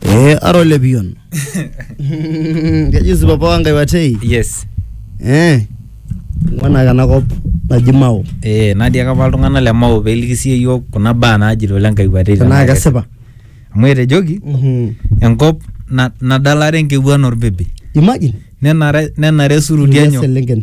Eh, ara ole pion. Keji si papa wangai watei. yes Eh. Ngwana kana kop naji Mao. eh natii ake apa iltung'anak le mao peeliki sii yiok kuna baa naajito le nkai watei Tenaa kesipa. amu etejoki Mhm. enkop na- nadalare enkewuan orbibi Imagine. nenare nenare esuruti Nkulie enyo selenken.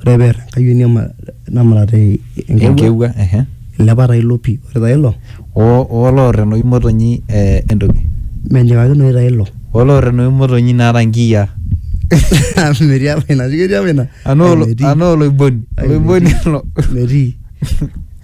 ore peer enkayioni emurat enkewuo ilepa taa ilo pii ore taa ilo oo loor enoshi motonyi entoki menyikakinoyu taa ilo oo loor enoshi motonyi naata inkiyia metii apa ina ketii apa ina anaa olo- Metii. anaa oloiboni Ai, oloiboni metii. ilo metii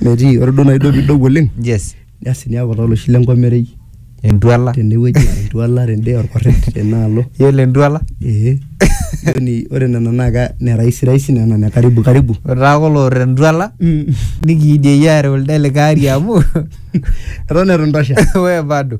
metii ore duo naaji duo piidou oleng yes Asi niaku taa oloshi le nkomerei. Entuala. Tene wueji entuala tende olkorret tena alo. Iyiolo entuala? Ee. Yaani ore nena naa ne rahisi rahisi nena ne karibu karibu. Ore taa kulo oorita entuala nikiidie iyie aareu lido likae ari amu. Eton itu intosha? Wee bado.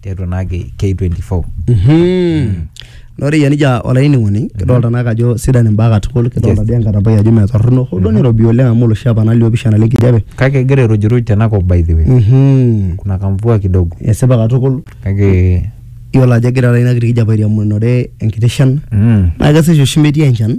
tiatua naake K24. Mhm. Naa ore eyia nejia olainining'oni kidolta naake ajo sidan imbaa katukul kidolta Yes. dii enkatampai ajo mee torrono hoo duo nirobi oleng amu oloshi apa nalio pisha naleng kijape. Kake egira airujuruj tenakop by the way. Mhm. Kuna kamvua kidogo. Esipa katukul Kake iyiolo ajo egira taata ina kiti kijape airiamunore enkiti shan mm. naa kesesh oshi metii enchan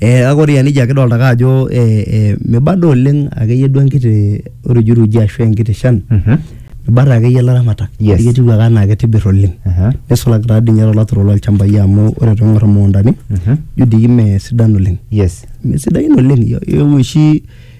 Kake ore aa neijia kidolita ake ajo meiba duo oleng ake iyie duo enkiti rujuruji ashu enkiti shan. Eibatata ake iyie ilaramatak ajo etiu ake enaa keitibir oleng. Neisulaki taa dii ninye too laturok loo lchambai amu ore pee ing`or imukuntani ijo doi mme sidan oleng. Mme sidain oleng ijo oshi.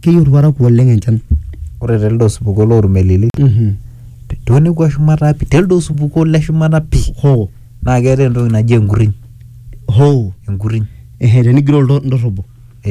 keyieu irparakuo oleng enchan ore telde osupuko lormelili tonekua shumata pi telde osupuko le shumata pi hoo naa keetae entoki naji enkuriny hoo enkuriny ehe tenigiroo ildo- indorrobo